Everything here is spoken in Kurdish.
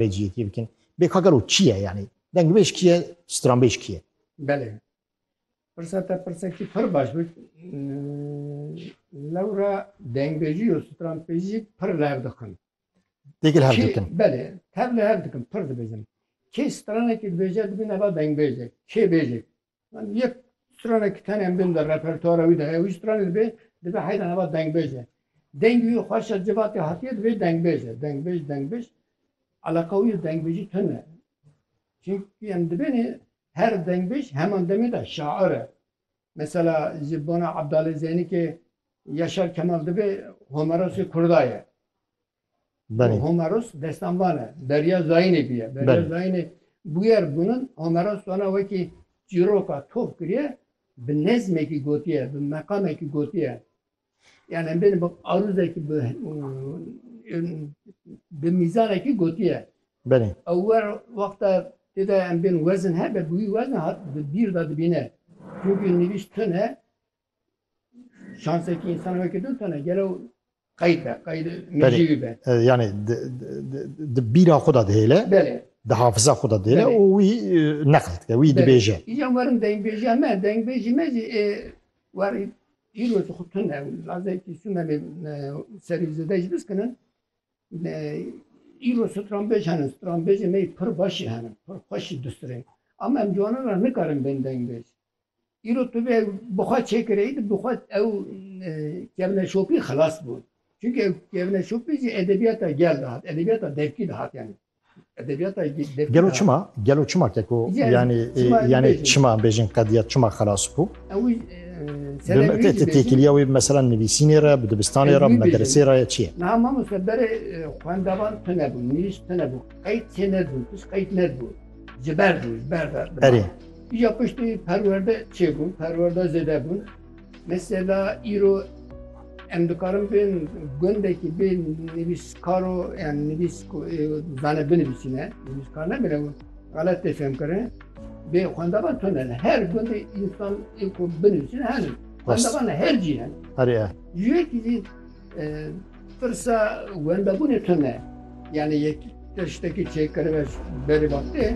Pêciyetiyê bikin. Bêkagero kî ye yanî? Dengbêj kî ye? Stranbêj kî ye? Belê. Pirsa te pirsekî pir baş bû. Lewra dengbêjî û stranbêjî pir li hev dixin. Têkil hev dikin. Belê. Tev li hev dikin. Pir dibêjin. Kê stranekî dibêje dibîne va dengbêjek. Kê bêjek Yani yek stranê ki tenê em bên de repertuara wî de heye wî stranê dibê dibe heyran heva dengbêj e. Dengê wî xweşa civatê hatiye dibê dengbêj e. Dengbêj dengbêj eleqa wî dengbêjî tun e. Çünkü em dibênê her dengbêj heman demê de şair e. Mesela ji bona Abdalê Zeynî ki Yaşar Kemal dibê Homerosê Kurda ye. Belê. Homeros destan van e. Derya Zayînê bûye. Belê. Derya Zayînê bûyer gunin. Homeros wana wekî çîroka tof kiriye, bi nezmekî gotiye, bi meqamekî gotiye. Yani em bêne bi arûzekî bi bi mîzanekî gotiye. Belê. Ew wer wexta tê de em bên wezin hebe bi wî wezna hat bi bîr de dibîne. Çünkü nivîş tune Şansekî însan weke din tane gelo qeyd be, qeyd mecîwî be. Yani di bîra xwe de dihêle. Belê. Di hafiza xwe de dihêle û wî neql dike, wî dibêje. Îjan werin dengbêjiya me, dengbêjî me jî ê werî îro ji xwe tune ew lazekî Sumerê serî zêde jî biskinin. Îro stranbêj hene, stranbêjê me pir başî hene, pir xweş jî dustirên. Ama em ciwanan re nikarin bên dengbêj. Îro tu vê bi xwe çêkireyî di bi xwe ew kevneşopî xilas bû. Çünkü ew kevneşopî jî edebiyata gel de hat, edebiyata devkî de hat yani. Edebiyata devkî Gelo çima? Gelo çima keko yani yani, çima yani bêjin. çima bêjin qediyet çima xilas bû? Ew e, sebebî jî bêjin. Têkiliya wê mesela nivîsînê re, bi dibistanê re, bi medresê re ya çi ye? Niha mamoste berê xwendevan tune bû, nivîs tune bû, qeyt çê nedibû, pişt qeyt nedibû. Ji ber bû, ji ber ve. Erê. Îja piştî perwerde çêbû, perwerde zêde bû. Mesela îro em dikarin bên gundekî bê nivîskaro yan nivîs ku zane binivîsîne, nivîskar nebine û xelet tê fêm kirin. Bê xwendevan tune ne. Her gundê însan ê ku binivîsîne henin. Xwendevan her cî henin. Erê. Ji yekî zî Pirsa wendebûnê tune ye. Yanî yek tiştekî çêkirine berê vaqtê.